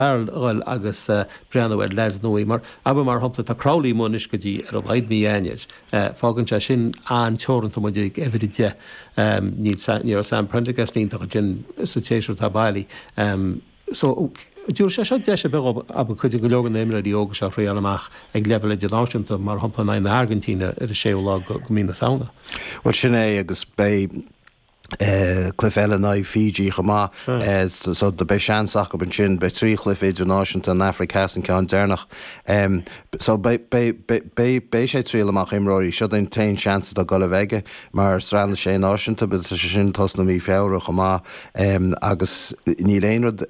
Farrell ag breathnú ar leaids nuaí mar, abair mar shompla, tá Crowley amuigh go dtí ar a laghad mí Eanáir. Fágann sé sin an-teoranta muid ag uimhir a deich. Níl Sam, ní raibh Sam Prendergast iontach ansin sa tséasúr atá bailithe. So, dtabharfaidh sé seo deis ar bith dhó, abair, cuid de go leor de na imreoirí óga seo a thriáil amach ag leibhéal idirnáisiúnta, mar shompla in aghaidh na hAirgintíne ar an séú lá de mhí na Samhna. Bhuel, sin é agus beidh, chluife eile in aghaidh Fiji chomh maith so beidh seansanna acu ansin. Beidh trí chluiche idirnáisiúnta an Afraic Theas an ceann deireanach so beidh sé ag triáil amach imreoirí. Seo an t-aon seans atá ag dul a bheith aige mar Sraith na Sé Náisiún agus tá sé sin ag tosnú mí Feabhra chomh maith agus níl aon rud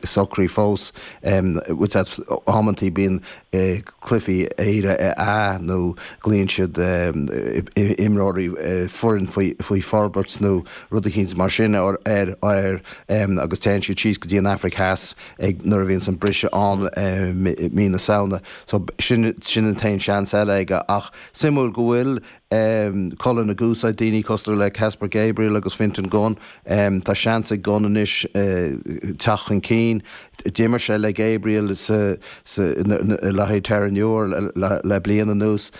socraithe fós. Amanntaí bíonn cluichí Éire A nó glaíonn siad imreoirí foireann faoi forbairt nó rud eicínt mar sin air agus téann siad síos go dtí an Afraic Theas ag nuair a bhíonns an briseadh ann mí na Samhna so sin sin an t-aon seans eile aige ach suimiúil go bhfuil cúlaí na gcúigí, daoine cosúil le Caspar Gabriel agus Fintan Gunne. Tá seans ag Gunne anois teacht chun cinn. D'imir sé le Gabriel le haghaidh Terenure le bliain anuas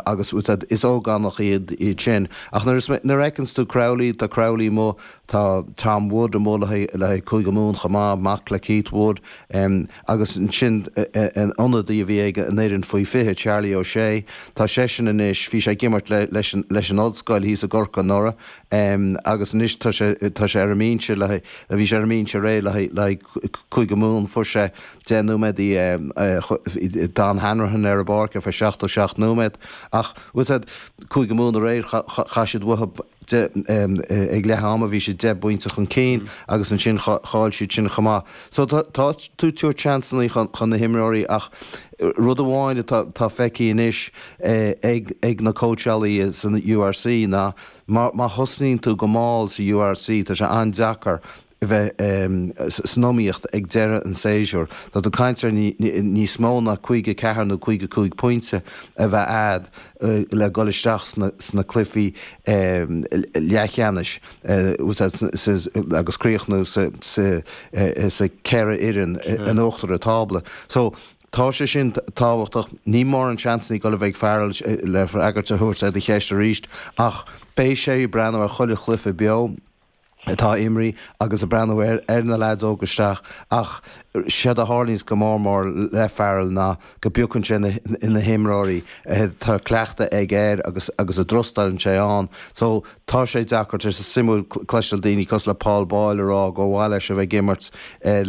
agus is ógánaigh iad sin. Ach nuair a fheiceanns tú Crowley, tá Crowley amuigh, tá Tom Wood amuigh le haghaidh Cúige Mumhan chomh maith, mac le Keith Wood. agus ansin an t-ionadaí a bhí ag Éirinn faoi 20, Charlie O'Shea, tá seisean anois, bhí sé ag imirt leis an Ollscoil thíos i gCorcaigh anuraidh agus anois tá sé, tá sé ar an mbinse le haghaidh, bhí sé ar an mbinse aréir le haghaidh, le haghaidh Cúige Mumhan, fuair sé deich nóiméad i, bhí JJ Hanrahan ar an bpáirc ar feadh 77 nóiméad ach, cé is moite, Cúige Mumhan aréir, chaith siad uathu é. de, ag leath ama bhí sé deich bpointe chun cinn agus ansin chaill siad sin chomh maith. So tá tú ag tabhairt seansanna chun na himreoirí ach rud amháin atá feicthe anois ag ag na cóitseálaí san URC ná má thosnaíonn tú go mall sa URC tá sé an-deacair a bheith san iomaíocht ag deireadh an tséasúir, tá tú ag caint ar níos mó ná 54 nó 55 pointe a bheith a'd le dhul isteach sna cluichí leathcheannais agus críochnú sa cheithre fhoireann in uachtar an tábla. So, tá sé sin tábhachtach. Ní mór an seans atá ag dul a bheith ag Farrell le freagra a thabhairt ar do cheist arís, ach beidh sé ag breathnú ar chuile chluiche beo atá ag imirt agus ag breathnú ar na leaids óga isteach ach séard a tharlaíonns go mór mór le Farrell ná go bpiocann sé na himreoirí atá cleachtadh aige air agus agus a dtrustálann sé ann so tá sé deacair tá sé suimiúil cloisteáil daoine cosúil le Paul Boyle a rá gur mhaith leis a bheith ag imirt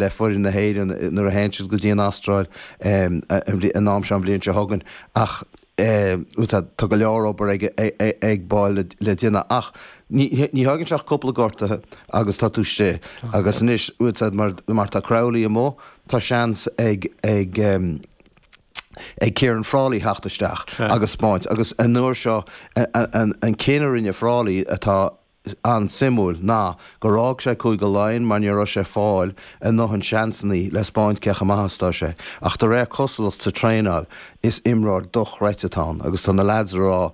le foireann na hÉireann nuair a théann siad go dtí an Astráil an am seo an bhliain seo chugainn ach Tá go leor obair ag Boyle le déanamh ach ní thógann sé ach cúpla gortuithe agus tá tú istigh agus anois mar tá Crowley amuigh tá seans ag Ciaran Frawley theacht isteach agus spáint agus an uair seo an cinneadh a rinne Frawley atá an-suimiúil ná gur fhág sé Cúige Laighean mar ní raibh sé ag fáil a ndóthain seansannaí le 'spáint cé chomh maith is atá sé. Ach de réir cosúlacht sa traenáil is imreoir dochreidte atá ann agus tá na leaids a rá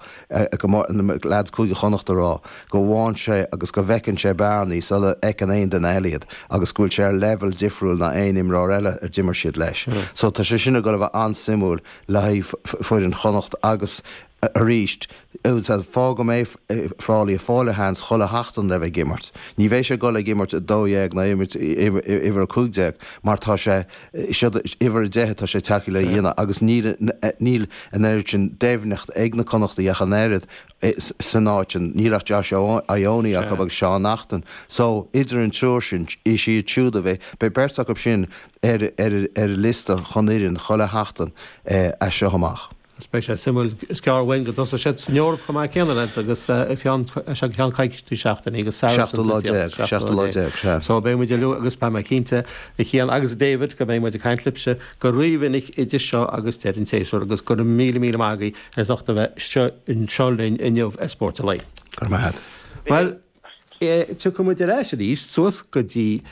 go mba, leaids Cúige Chonnacht a rá go bhfaigheann sé agus go bhfeiceann sé bearnaí sula fheiceann aon duine eile iad agus go bhfuil sé ar leibheal difriúil ná aon imreoir eile a d'imir siad leis. So tá sé sin ag dul a bheith an-suimiúil le haghaidh foireann Chonnacht agus arís an fáth go mbeidh Frawley ag fáil a sheans chuile sheachtain le bheith ag imirt. Ní bheidh sé ag dul ag imirt 12 ná imirt uimhir 15 mar tá sé, is, uimhir 10 atá sé tagtha le dhéanamh agus níl, níl an oiread sin doimhneacht ag na Connachtaigh ach an oiread san áit sin. Níl ach Josh Ioane acu agus Seán Naughton. So, idir an triúr sin, siad siúd a bheidh, beidh beirt acu sin ar, ar, ar an liosta chun fhoireann chuile sheachtain as seo amach. Is beidh sé suimiúil, is gearr uainn go dtosóidh siad san Eoraip chomh maith céanna, lads, agus is ag ceann coicísí seachtainí agus Saracens an tseachtain seo. Seachtú lá déag, sea. So beidh muid ar, agus tá mé cinnte, a Chian agus David, go mbeidh muid ag caint libhse go rímhinic idir seo agus deireadh an tséasúir, agus go raibh míle míle maith agaibh as ucht a bheith anseo linn inniu ar Spórt an Lae. Go raibh maith a'd. Bhuel. Tiocfaidh muid ar ais arís suas go dtí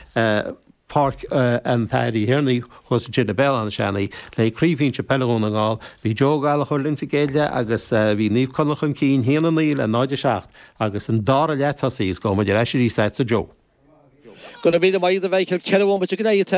Páirc an Athar Uí Thiarnaigh thuas ansin i mBéal Átha Seanaidh le Craobh Shinsir Peile Dhún na nGall. Bhí Joe Ó Gallchóir linn sa gcéad leath agus bhí Naomh Conaill chun cinn, 1 9 le 0 7, agus an dara leath tosaithe is gabhfaidh muid ar ais arís a'dsa Joe. Go raibh míle maith agat a Mhichael, ceithre bhomaite imithe.